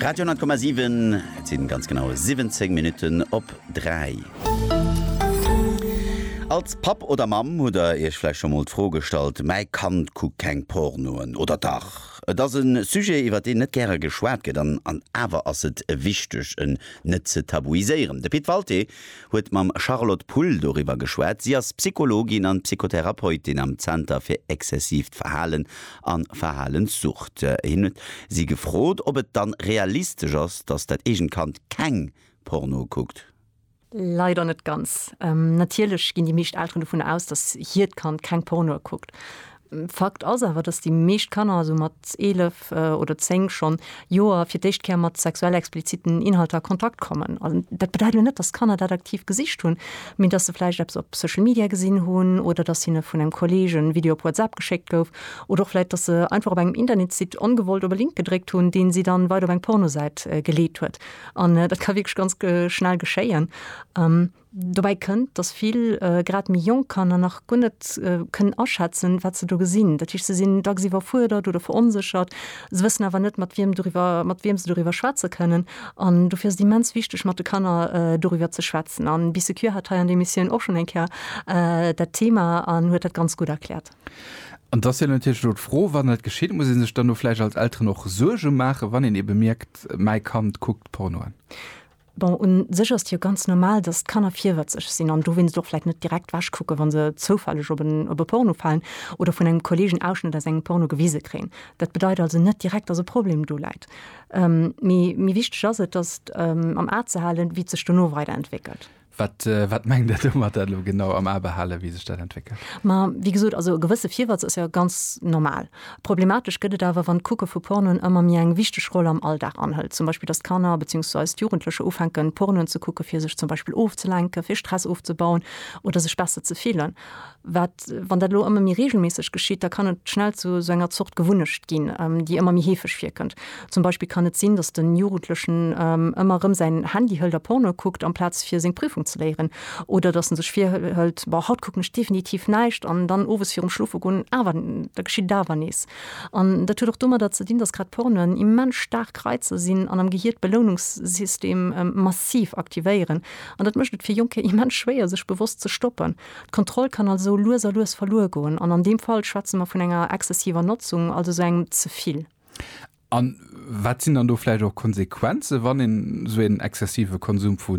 Radio 10,7, Et sinn ganz genau 17 Minutten op 3. Als Papp oder Mamm hutt der iech vläicht scho mol d'Fro gestallt, mäi Kand kuckt keng Pornoen, oder dach? Et ass e Sujet iwwert deen net gäre geschwat gëtt, an awer ass et wichteg en net ze tabuiséieren. De Pit Walté huet mam Charlotte Pull doriwwer geschwat. Si ass Psychologin an Psychotherapeutin am Zenter fir exzessiivt Verhalen a Verhalenssucht. Hien huet si gefrot, ob et dann realistesch ass, dass dat eegent Kand keng Porno kuckt. Leider net ganz. Natierlech ginn déi meescht Elteren dovunner aus, dass hiert Kand keng Pornoe kuckt. Fakt ass awer, dass déi meescht Kanner esou mat 11 oder 10 schonn Joer fir d'éischt Kéier mat sexuell expliziten Inhalter a Kontakt kommen. Dat bedeit elo net, dass d'Kanner dat aktiv gesicht hunn, mee dass se vläicht eppes op Social Media gesinn hunn oder dass hinne vun engem Kolleeg en Video op WhatsApp geschéckt gouf oder och vläicht, dass se einfach op engem Internetsite ongewollt op e Link gedréckt hunn, deen si dann weider op eng Pornosäit geleet huet. An dat ka wierklech ganz schnell geschéien. Dobäi kënnt, datt vill, grad méi jonk Kanner nach guer net kënnen aschätzen, wat se do gesinn. Dat heescht, se sinn dacks iwwerfuerdert oder veronséchert. Se wëssen awer net, mat wiem doriwwer, mat wiem se doriwwer schwätze kënnen. An dofir ass et immens wichteg, mat de Kanner doriwwer ze schwätzen. An d'Bi Secure hat hei an der Emissioun och schonn eng Kéier dat Thema an huet dat ganz gutt erkläert. An et ass jo natierlech elo d'Fro, Wann dat geschitt, muss ee sech dann do vläicht als Elteren och Suerge maachen, wann een ebe mierkt, mäi Kand kuckt Porno an? Bon, un sech ass et jo ganz normal, dass d'Kanner virwëtzeg sinn an dowéinst och vläit net direkt wech kucken, wa se zoufälleg op en op e Porno falen oder vun engem Kolleeg en Ausschnëtt aus engem Porno gewise kréien. Dat bedeit also net direkt, dass e Problem do läit. Mee méi wichteg ass et, dass am A ze halen, wéi et sech dono weider entwéckelt. Wat, wat mengt Der domat elo genau, am A behalen, wéi sech dat entwéckelt? Ma wéi gesot, also e gewësse Virwëtz ass jo ganz normal. Problematesch gëtt et awer, wann d'Kucke vu Pornoen ëmmer méi eng wichteg Roll am Alldag anhëlt. Zum Beispill, datt d'Kanner beziehungsweise d'Jugendlecher ufänken, Pornoen ze kucken, fir sech zum Beispill ofzelenken, fir Stress ofzebauen oder sech besser ze fillen. Wat, wann dat elo ëmmer méi reegelméisseg geschitt? Da kann et schnell zu esou enger Zort Gewunnecht ginn, déi ëmmer méi heefeg virkënnt. Zum Beispill kann et sinn, dass den Jugendlechen ëmmer erëm säin Handy hëlt a Porno kuckt amplaz fir seng Prüfung ze léieren. Oder dass en sech virhëlt, Boah, haut kucken ech definitiv näischt! an dann owes virum Schlofe goen awer, da geschitt et awer nees. An dat huet och domadder ze dinn, dass grad Pornoen immens staark Reizer sinn an am Gehier d'Beloununkssystem massiv aktivéieren. An dat mécht et fir Jonker immens schwéier sech bewosst ze stoppen. D'Kontroll kann also lues a lues verluer goen. An an deem Fall schwätze mer vun enger exzessiver Notzung, also esou engem Zevill. An wat sinn dann do vläicht och Konsequenzen, wann een esou een exzessive Konsum vu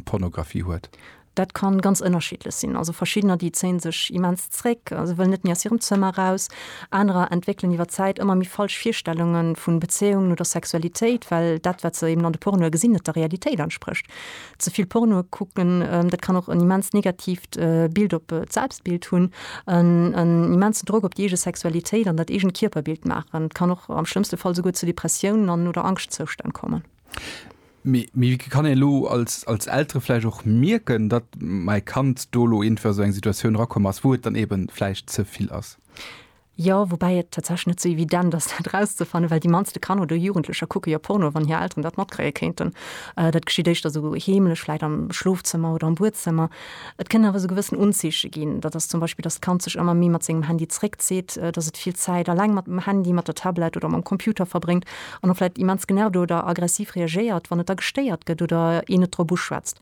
Pornografie huet? Dat ka ganz ënnerschiddlech sinn. Also verschiddener, déi zéie sech immens zréck, se wëllen net méi aus hirem Zëmmer eraus. Anerer entwéckelen iwwer d'Zäit ëmmer méi falsch Virstellunge vu Bezéiungen oder Sexualitéit, well dat, wat se eben an de Pornoe gesinn, net der Realitéit entsprécht. Ze vill Porno kucken, dat kann och en immens negatiivt Bild op d'Selbstbild hunn, en immensen Drock op déi eege Sexualitéit an dat eegent Kierperbild maachen. Et kann och am schlëmmste Fall souguer zu Depressiounen an oder Angschtzoustänn kommen. Mee wéi kann een elo als Eltere vläicht och mierken, datt mäi Kand do elo iergendwéi a sou eng Situatioun erakomm ass, wou et dann eeben vläicht ze vill ass? Jo, woubäi et tatsächlech net sou evident ass, dat erauszefannen, well déi mannste Kanner oder Jugendlecher kucke jo Porno, wann hir Elteren dat matkréie kéinten. Dat geschitt éischter sou heemlech, vläicht am Schlofzëmmer oder am Buedzëmmer. Et kënnen awer sou gewëssen Unzeeche ginn. Dat ass zum Beispill, dass d'Kand sech ëmmer méi mat sengem Handy zeréckzitt, dass et vill Zäit eleng mat dem Handy, mat der Tablett oder mam Computer verbréngt an och vläicht immens genervt oder aggressiv reagéiert, wann et da gestéiert gëtt oder een et drop uschwätzt.